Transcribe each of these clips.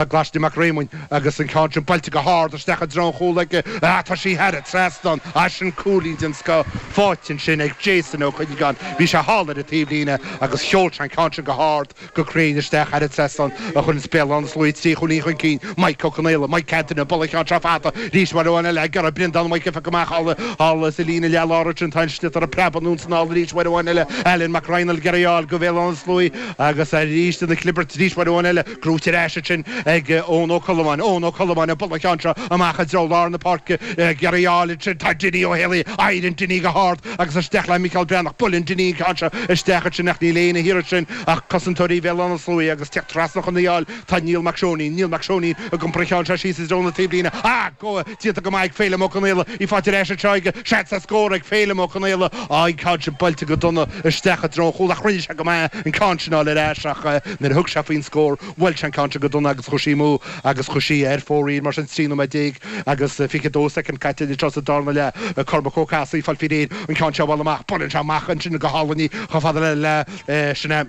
Glaisne Mac Réamoinn agus an ceann sin buailte go hard isteach i dtreo an chúl aige, tá sí thar an trasnán, eisean cúilín den scoth faighte ansin ag Jason Ó Cuinneagáin, bhí sé thall ar an taobhlíne agus sheol sé an ceann sin go hard, go cruinn isteach thar an trasnán a chuireanns Béal Átha na Sluaighe trí chúilín chun cinn, Maidhc Ó Conaola, Mike Anthony, ag bualadh an cheann seo fada arís, uair amháin eile ag iarraidh Brendán Mhaidhc a phiocadh amach thall sa líne leath-lár ansin, tá an sliotar ag preabadh anonn 's anall arís, uair amháin eile, Ailean Mac Raghnaill ag iarraidh í a fháil go Bhéal Átha na Sluaighe agus arís ina chlibirt arís, uair amháin eile. Brúite ar ais ansin ag Eoin Ó Colmáin, Eoin Ó Colmáin ag bualadh an cheann seo amach i dtreo lár na páirce, ag iarraidh í a fháil ansin, tá Dinny Ó Héalaí, éiríonn Dinny go hard agus isteach le Micheál Breathnach, buaileann Dinny an ceann seo isteach ansin ach níl éinne thiar ansin ach cosantóirí Bhéal Átha na Sluaighe agus ag teacht trasna chun í a fháil tá Niall Mac Seoinín, Niall Mac Seoinín ag iompar an cheann seo síos i dtreo na taobhlíne ach go Déanta go maith ag Féilim Ó Conaola, í faighte ar ais ansin aige, seans ar scór ag Féilim Ó Conaola ach an ceann sin buailte go dona isteach i dtreo an chúil ach rinne sé go maith an ceann sin a fháil ar ais ach nuair a thug sé faoin scór bhuail sé an ceann sin go dona agus chuaigh sí amú agus chuaigh sí ar fóraoil mar sin trí nóiméad déag agus 22 soicind caite anseo sa dárna leath Cormac Ó Cathasaigh ag fáil faoi réir an ceann sin a bhualadh amach buaileann sé amach ansin go hálainn í chomh fada le sin é.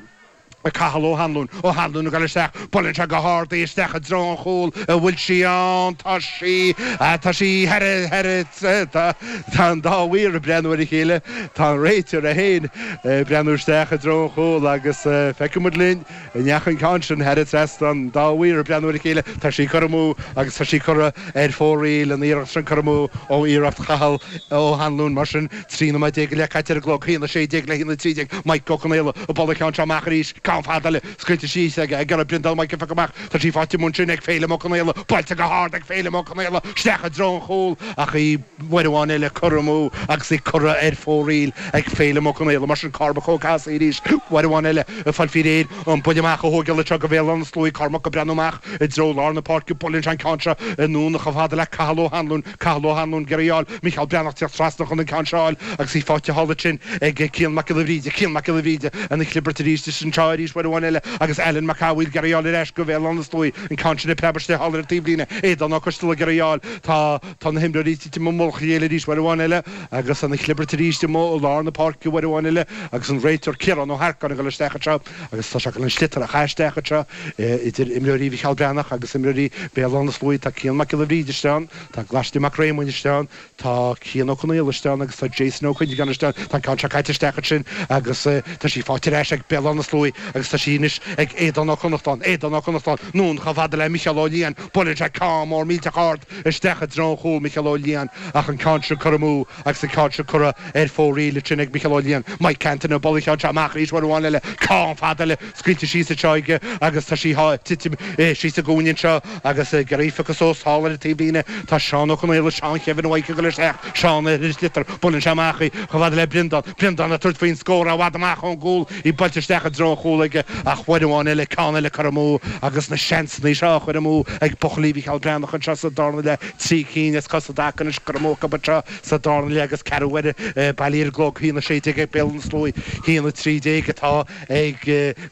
Cathal Ó hAnluain, Ó hAnluain a ghoil isteach, buaileann sé go hard í, isteach i dtreo an chúil an bhfuil sí ann, tá sí, tá sí thar, thar, tá, tá an dá mhaor ag breathnú ar a chéile, tá an réiteoir é féin ag breathnú isteach i dtreo an chúil agus feicfidh muid linn an ndeachaigh an ceann sin thar an trasnán, tá an dá mhaor ag breathnú ar a chéile, tá sí curtha amú agus tá sí curtha ar fóraoil an iarracht sin, curtha amú ó iarracht Chathail Ó hAnluain mar sin. 13 nóiméad i leith caite ar an gclog, a haon 16 le a haon 13, Mike Ó Conaola ag bualadh an cheann seo amach arís, ceann fada eile scaoilte síos ag iarraidh Brendán Mhaidhc a phiocadh amach, tá sí faighte amuigh ansin ag Féilim Ó Conaola, buailte go hard ag Féilim Ó Conaola isteach i dtreo an chúil ach í, uair amháin eile curtha amú agus í curtha ar fóraoil ag Féilim Ó Conaola, mar sin Cormac Ó Cathasaigh arís, uair amháin eile ag fáil faoi réir an buille amach a thógáil anseo go Bhéal Átha na Sluaighe, Cormac ag breathnú amach. I dtreo lár na páirce buaileann sé an ceann seo anonn chomh fada le Cathal Ó hAnluain, Cathal Ó hAnluain ag iarraidh í a fháil, Mícheál Breathnach ag teacht trasna chun an ceann seo a fháil agus í faighte thall ansin ag Cian Mac Giolla Bhríde, Cian Mac Giolla Bhríde ina chlibirt arís is anseo arís uair amháin eile agus Alan Mac Cathmhaoil ag iarraidh í a fháil ar ais go Bhéal Átha na Sluaí an ceann sin ag preabadh istigh thall ar an taobhlíne Aodán Ó Coisteala ag iarraidh í a fháil, tá tá na himreoirí ag titim i mullach a chéile arís uair amháin eile agus ina chlibirt arís i lár na páirce uair amháin eile agus an réiteoir Ciarán Ó hEarcáin ag dul isteach anseo. Agus tá sé chun an sliotar a chaitheamh isteach anseo idir imreoirí Mhicheál Breathnach agus imreoirí Bhéal Átha na Sluaighe. Tá Cian Mac Giolla Bhríde istigh ann, tá Glaisne Mac Réamoinn istigh ann, tá Cian Ó Conaola istigh ann agus tá Jason Ó Cuinneagáin istigh ann. Tá an ceann seo caite isteach ansin agus tá sí faighte ar ais ag Béal Átha na Sluaighe agus tá sí anois ag Aodán Ó Connachtáin. Aodán Ó Connachtáin, anonn chomh fada le Micheál Ó Liatháin, buaileann sé ceann mór millteach ard isteach i dtreo an chúil, Micheál Ó Liatháin ach an ceann sin curtha amú Agus an ceann seo curtha ar fóraoil ansin ag Micheál Ó Laighin, Mike Canty nó bualadh an cheann seo amach arís uair amháin eile, ceann fada eile scaoilte síos anseo aige agus tá sí ag titim síos sa gcúinne anseo agus gerífocus ós thall ar an taobh líne tá Seán Ó Conaola, Seán Kevin Ó hOiche ag dul isteach, Seán ar an sliotar, buaileann sé amach í chomh fada le Breandán, Breandán ag tabhairt faoin scór i bhfad amach ón gcúl, í buailte isteach i dtreo an chúl aige ach uair amháin eile, ceann eile curtha amú agus na seansanna seo á chur amú ag buachaillí Mhicheál Breathnach anseo sa dárna leath. Trí cinn as cosa i dtaca anois curtha amú acu anseo sa dara leath agus ceathrú uaire bailithe ar an gclog. Haon 16 ag Béal Átha na Sluaighe, haon 13 atá ag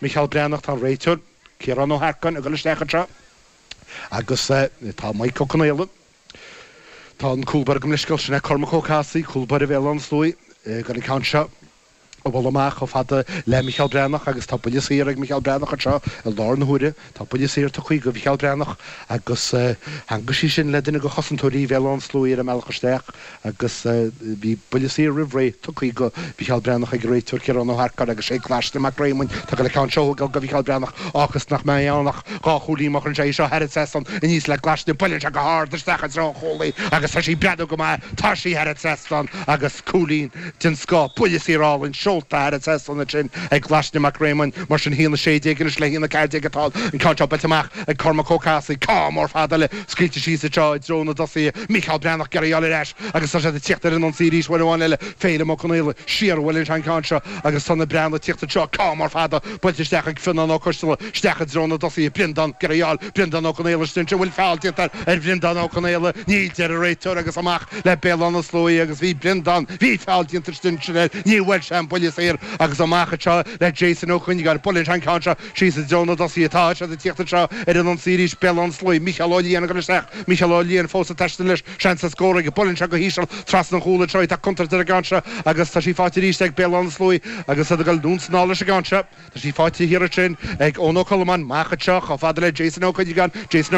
Micheál Breathnach. Tá an réiteoir, Ciarán Ó hEarcáin, ag dul isteach anseo agus tá Maidhc Ó Conaola. Tá an cúlbaire gabh mo leithscéal, sin é Cormac Ó Cathasaigh, cúlbaire Bhéal Átha na Sluaighe, ag an gceann seo. a dhul amach chomh fada le Micheál Breathnach agus tá buille saor ag Micheál Breathnach anseo i láthair na huaire. Tá buille saor tugtha do Mhicheál Breathnach agus theangmhaigh sí sin le duine de chosantóirí Bhéal Átha na Sluaighe ar an mbealach isteach agus bhí buille saor roimh ré tugtha do Mhicheál Breathnach ag an réiteoir Ciarán Ó hEarcáin agus sé Glaisne Mac Réamoinn atá ag gabháil an ceann seo a thógáil do Mhicheál Breathnach a fhágfas nach mbeidh ann ach dhá chúilín má chuireann sé é seo thar an trasnán aníos le Glaisne. Buaileann sé go hard isteach i dtreo an chúl í agus tá sí ag breathnú go maith. Tá sí thar an trasnán agus cúilín. den scoth, buille saor álainn, seolta thar an trasnán ansin ag Glaisne Mac Réamoinn, mar sin, a haon 16 anois le a haon 14 atá an ceann seo buailte amach ag Cormac Ó Cathasaigh, ceann mór fada eile scaoilte síos anseo i dtreo na dtosaithe, Mícheál Breathnach ag iarraidh í a fháil ar ais agus tá siad ag tíocht ar an ionsaí arís, uair amháin eile, Féilim Ó Conaola, siar uaidh leis an gceann seo agus tá na Breathnaigh ag tíocht anseo, ceann mór fada buailte isteach ag Fionnán Ó Coistealla, isteach i dtreo na dtosaithe, Breandán ag iarraidh í a fháil, Breandán Ó Conaola cinnte an bhfuil feall déanta ar Bhreandán Ó Conaola níl a deir an réiteoir agus amach le Béal Átha na Sluaighe agus bhí Breandán bhí feall déanta cinnte air ní bhfuair sé an buille saor agus amach anseo le Jason Ó Cuinneagáin buaileann sé an ceann seo síos i dtreo na dtosaithe tá siad ag tíocht anseo ar an ionsaí arís Béal Átha na Sluaighe Micheál Ó Laighin ag dul isteach Micheál Ó Laighin fós ag taisteal leis seans ar scór aige buaileann sé go híseal trasna an chúl anseo tá contúirt ar an gceann seo agus tá sí faighte arís ag Béal Átha na Sluaighe agus iad ag dul anonn is anall leis an gceann seo. Tá sí faighte thiar ansin ag Eoin Ó Colmáin, amach anseo, chomh fada le Jason Ó Cuinneagáin, Jason.